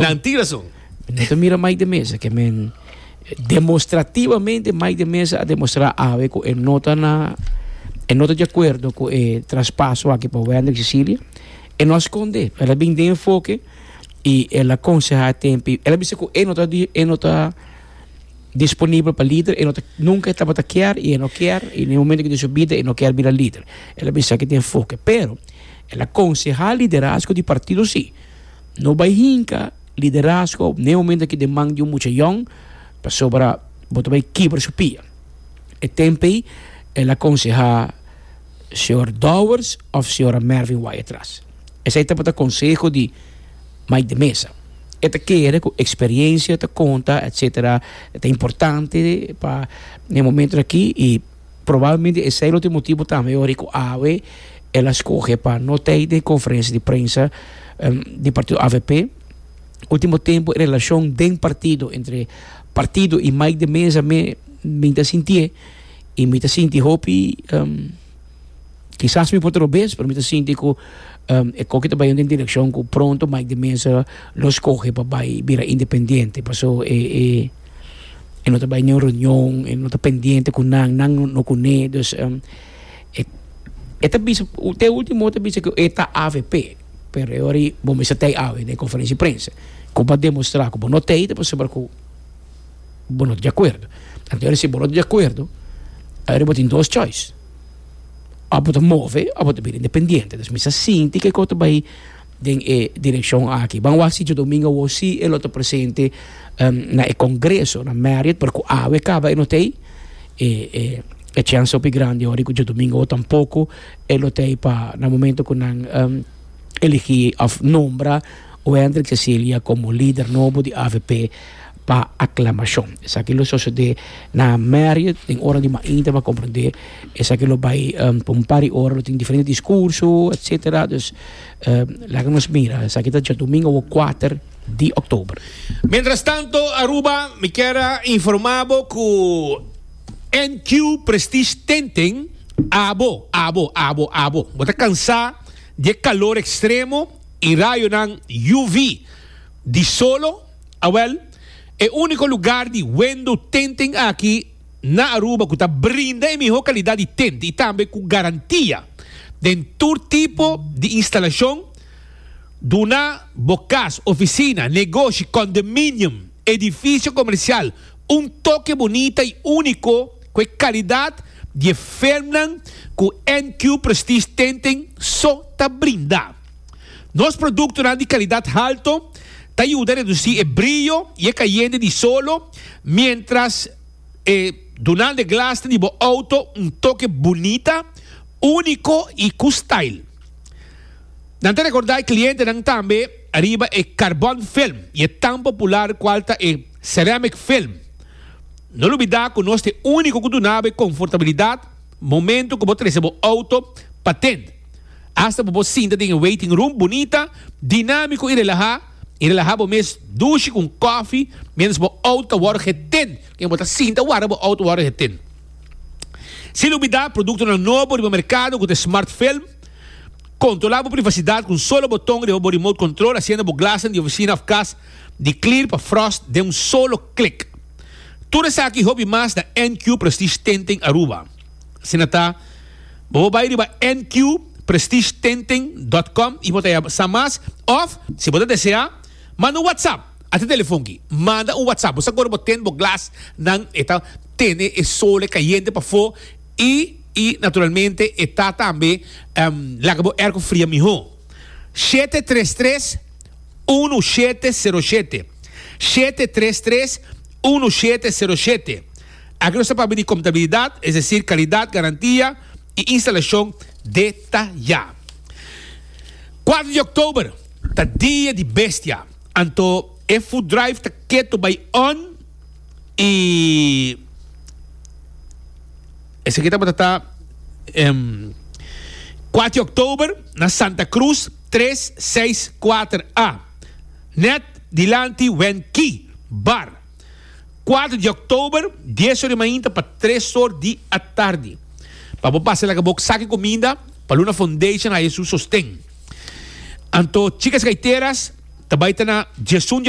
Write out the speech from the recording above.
Nan tin rason. No ta mira Mike de Meza ke men demostrativamente Mike de Meza a demostra awe ku e no ta na e no ta di akuerdo ku e traspaso aki pa Wander Cecilia. E no a skond'é. El a bin den enfoke i el a konsehá tempu. El a bisa ku e no ta e no ta disponibel pa lider. E no ta nunka e tabata kier i e no kier i den e momento ku den su bida e no kier bira lider. El a bisa ki ta enfoke pero el a konsehá liderazgo di partido si. No bai hinka liderazgo op ne momento aki den man di un mucha yòn, pasobra bo ta bai kibra su pia. E tempu ei el a konsehá señor Dowers òf señora Mervin wak atras. Esei tabata konseho di Mike de Meza. E ta kere ku eksperiensia ta konta, etsetera, ta importante pa e momentonan aki i Probalmente esei lo tin motibu tambe ora ku awe el a skohe pa no ta ei den e konferensia di prensa di partido avp. Ultimo tempu e relashon den partido, entre partido i Mike de Meza mi mi ta sintié i mi ta sinti hopi kisas mi por ta lo bes pero mi ta sinti ku e koki ta bai yon den direkshon ku pronto Mike de Meza lo skohe pa bai bira independiente paso e e. e no ta bai niun reunion, e no ta pendiente ku nan, nan no kuné. Dus um, e, e ta bisa, te último ta bisa ku e ta avp, pero e ori bo mester tei awe den konferensia prensa. Ku bo demostrá ku bo no tei, ta pasobra ku bo no ta di akuerdo. Anto ora si bo no ta di akuerdo, ayora bo tin dos choice, òf bo ta move òf bo ta bira independiente. Dus mi sa sinti ke ko ta bai den e direccion aki. Ban wak si dje domingo awor si e lo ta presente na e congreso na Marriott pero cu awe caba e no ta ey e e e chance hopi grandi awor di cu dje domingo awor tampoco e lo ta ey pa na momento cu nan eligi of nombra Wendrick Cecilia como lider nobo di avp. pa aklamashon. Esaki lo sosodé na Marriott den ora di mainta pa komprondé. Esaki lo bai pa un par di ora, lo tin diferente diskurso, etsetera. Dus, laga nos mira. Esaki ta djadumingu awo kuater di òktober. Mientras tanto Aruba, mi kier a informá bo ku NQ Prestige tenten abo, abo, abo, abo. Bo ta kansá di e kalor ekstremo i rayonan UV di solo? Awel, e úniko lugar di wendo tenten aki na Aruba ku ta brinda e mihó kalidat di tent i tambe ku garantia den tur tipo di instalashon duna bo kas, ofisina, negoshi, kondominium, edifisio komersial un toke bunita i úniko ku e kalidat di e firmnan ku NQ Prestige Tenten so ta brinda. Nos produktonan di kalidat halto ta yuda redusí e brio i e kayende di solo miéntras e duna de glasnan di bo outo un toke bunita, úniko i ku style. Nan ta rekordá e klientenan tambe riba e karbòn film i e tan popular kual ta e seramic film. No lubidá ku nos ta e úniko ku dunaba e konfortabilidat, Momento cu bo trece bo auto pa ten. Hasta bo por sinta den e waiting room bunita, dinamico y relaha y relaha bo mes dushi cu un coffee mientras bo auto ta worde geten. Ken bo ta sinta warda bo auto worde geten. Sin olbida productonan nobo riba mercado cu ta e Smart Film. Controla bo privacidad cu un solo boton riba bo remote control haciendo bo glasnan di oficina of cas di clear pa frost den un solo klik. Tur esaki hopi mas na NQ Prestige Tinting Aruba. Asina ta, bo por bai riba NQPrestigeTinting dot com y bo ta haya sa mas of, si bo ta desea, manda un WhatsApp a te telefon ki. Manda un WhatsApp. Bo sa kore bo tint bo glas nan e ta tene e sole cayente pafo y y naturalmente e ta tambe laga bo airco fria miho. Shete tres tres. Unu shete sero shete shete tres tres unu shete sero shete Aki nos ta papia di kontabilidat, es desir kalidat, garantia i instalashon detayá. Kuater di Oktober ta Dia di Bestia, anto e food drive ta ketu bai on i esaki tabata ta kuater di Oktober na Santa Cruz. tres seis kuater a nèt dilanti Wen Key bar, kuater di òktober, dies ora di mainta pa tres ora di atardi, pa bo pasa laga bo saki kuminda pa Luna Foundation haña su sosten. Anto Chicas Gaiteras ta bai ta na diesun di.